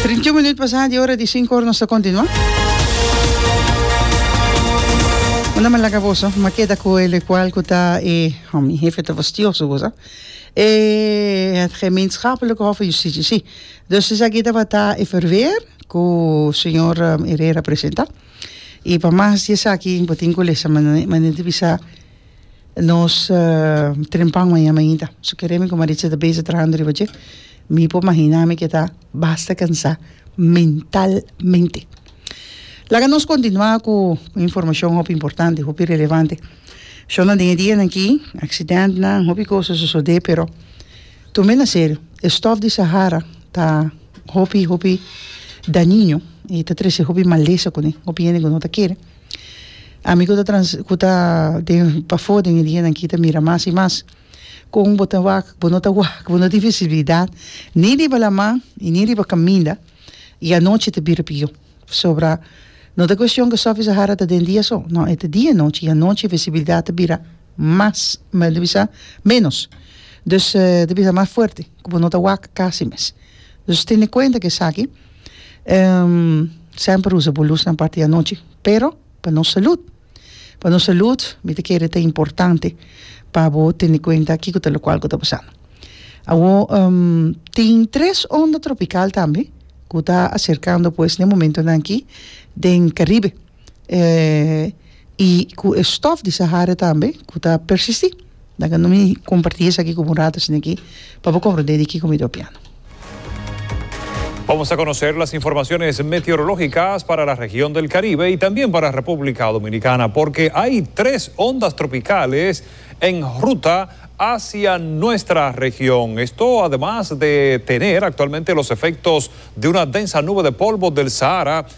Trintiún minüt pasá di ora di sinku, nos ta kontinuá. Bo no me laga boso, bo me keda ku e lokual ku ta e, ho mi hefe ta fastioso ku boso, e het Gemeenschappelijke Hof van Justitie, sí. Dus esaki tabata e verweer ku señor Herrera presentá. I pa mas di esaki bo tin ku lesa manera di bisa. Nos tren pan maña mainta. So kere mi ku Maritza ta beza trahando riba dje. Mi por mahina mi ke ta basta kansa mentalmente. Laga nos kontinua ku informashon hopi importante, hopi relevante. Shornan den e dianan aki, aksidentnan, hopi kos a sosodé, pero tuma e na serio. E stòf di Sahara ta hopi, hopi daniño i ta trese hopi malesa kuné, hopi hende ku no ta kere. Ami ku ta trans ku ta den pafó den e dianan aki ta mira mas i mas kon bo ta wak bo no ta wak bo no tin visibilidat ni riba laman i ni riba kaminda i anochi ta bira pió pasobra no ta kueshon ku Sòfi Sahara ta den dia so nò e ta dia i nochi i anochi e visibilidat ta bira mas men ta bisa ménos dus ta bisa mas fuerte. ku bo no ta wak kasi mes. Dus tene kuenta ku esaki. Semper usa bo lusnan parti anochi, pero pa nos salud. Pa nos salud mi ta kere ta importante pa bo tene kuenta kiko ta lokual ku ta pasando. Awo tin tres onda tropikal tambe ku ta aserkando pues den momentonan aki den Karibe. y cu e stof di Sahara tambe cu ta persisti laga no mi comparti esaki cu bo un rato asina aki pa bo comprende di kico mi ta opiando. Vamos a conocer las informaciones meteorológicas para la región del Caribe y también para República Dominicana, porque hay tres ondas tropicales en ruta hacia nuestra región. Esto además de tener actualmente los efectos de una densa nube de polvo del Sahara,